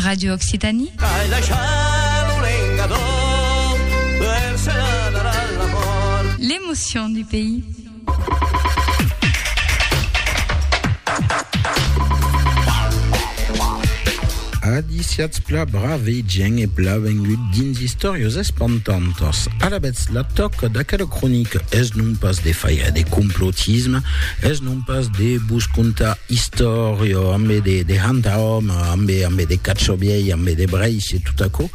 Radio Occitanie. Ai daishar lo lengador per se n'anar a la mort. L'emotion du pays. Adiciats pla brave e gien e pla vengut dins istorios espantantos. A la bètz la toc d'aquela cronica es non pas de faia de complotisme, es non pas de vos contar Istòria, ambe de de hanta òme, ambe ambe de cacho vièlh, ambe de brèish e tot aquò,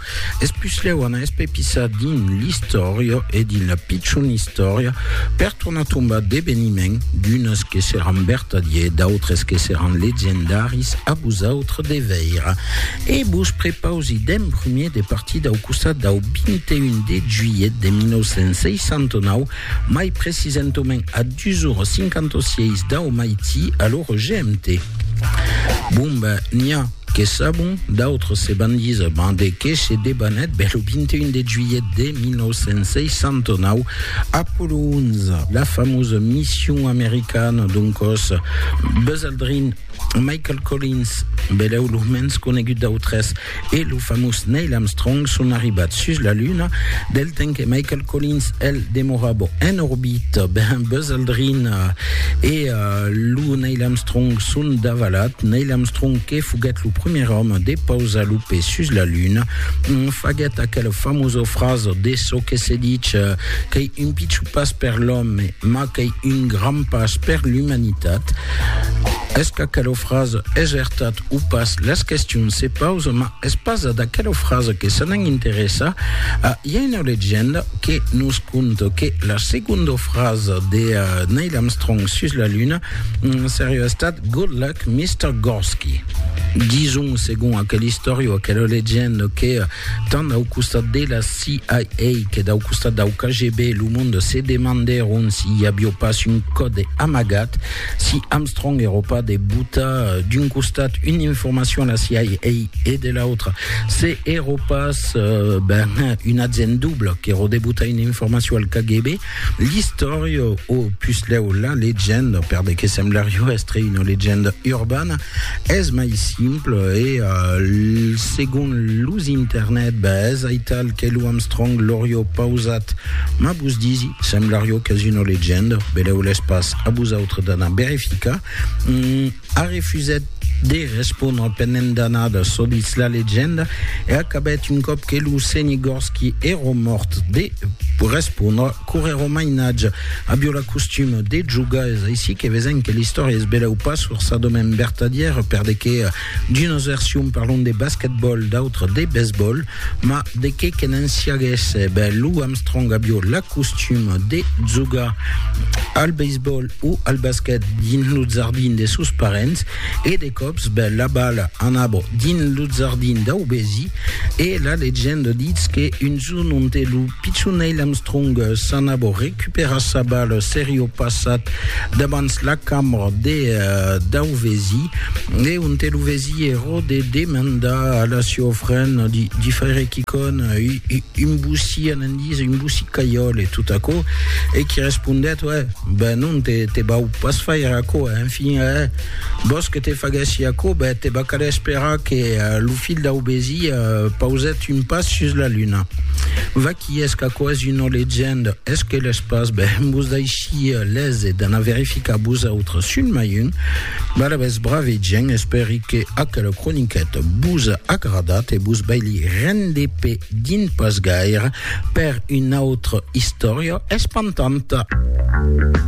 es puslèu anar espepissar dins l'istòria e dins la pichona istòria per tornar tombar d'eveniments, d'unes que seràn vertadiers, d'autres que seràn legendaris, a vosautres de veire. E vos prepausi d'en primier de partir dau costat dau 21 de juilhet de 1969, Mai precisentament a 2h56 dau maití a l'ora GMT. Bon ben, n'i a que sabon, d'autres se van díser ben de qué se debanèt ben lo 21 de juilhet de 1969, Apollo 11, la famosa mission americana, doncòs Buzz Aldrin, Michael Collins, belèu lo mens conegut dau tres, e lo famós Neil Armstrong son arribat sus la Luna, del temps que Michael Collins, el, demorava en orbita, ben, Buzz Aldrin e lo Neil Armstrong son davalat. Neil Armstrong, que foguèt lo primièr òme de pausar lo pè sus la Luna, faguèt aquela famosa frasa de çò que se ditz qu'ei un pichon pas per l'òme, mas qu'ei un grand pas per l'umanitat. Es qu'aquela frasa es ertat o pas? Las questions se pausa, ma es pas a d'aquela frasa que se n'an interessa. A, i a una legenda que nos conta que la segonda frasa de Neil Armstrong sus la Luna seriá estat Good luck, Mister Gorsky. Dison, segon aquela istòria o aquela legenda, que tant dau costat de la CIA que dau costat dau KGB, lo monde se demandèron si i avió pas un còde amagat. Si Armstrong Europa de buta d'un costat una informacion a CIA e de l'autre, se Europas euh, ben, un agent double que rodebuta una informacion al KGB, l'istòria o puslèu la legenda, per de que semblario estre una legenda urbana, es mai simple e euh, segon los internet, ben, es aital que lo Armstrong l'aurio pausat, ma vos disi, semblario qu'es una legenda, beleu l'espaç. A vosautres d'anar verificar. A refusèt de respondre pendent d'annadas, çò ditz la legenda, e acabèt un còp que lo Senigòrski èra mòrt de respondre qu'ora èra mainatge. Avió la costuma de jogar, es aicí que vesèm que l'istòria es belèu pas forçadament vertadièra, per de que D'unas versions parlon de basquetbòl, d'autras de besbòl, ma de qué que n'en siaguèsse, ben Lou Armstrong avió l'acostum de jogar al beisbòl o al basquet dins lo jardin de sos parents e de còps ben la bala anava dins lo jardin dau vesi e la legenda ditz que un Son onte, lo pichon Neil Armstrong, s'an a bo recuperar sa bala serio passat dabans la cambra de dau vesi e onte lo vesi ero de demandar a la sieu fren di faire quicon, un bossí an en dís, un bossí caiòl e tot aquò, e qui respondèt, Uè, ben non, te vau pas faire aquò, enfin, e vòs que te faguèssi aquò, ben te va caler esperar que lo filh dau vesi pausèt Tun pas sus la luna. Vaqui es qu'aquò's una legenda, es que l'es pas, ben vos daishia lese d'anar verificar vos autres sul mai un. Balabès brave gent, espèri que aquela croniqueta vos a agradat e vos vai li render pe din pas gaire per una autra istòria espantanta.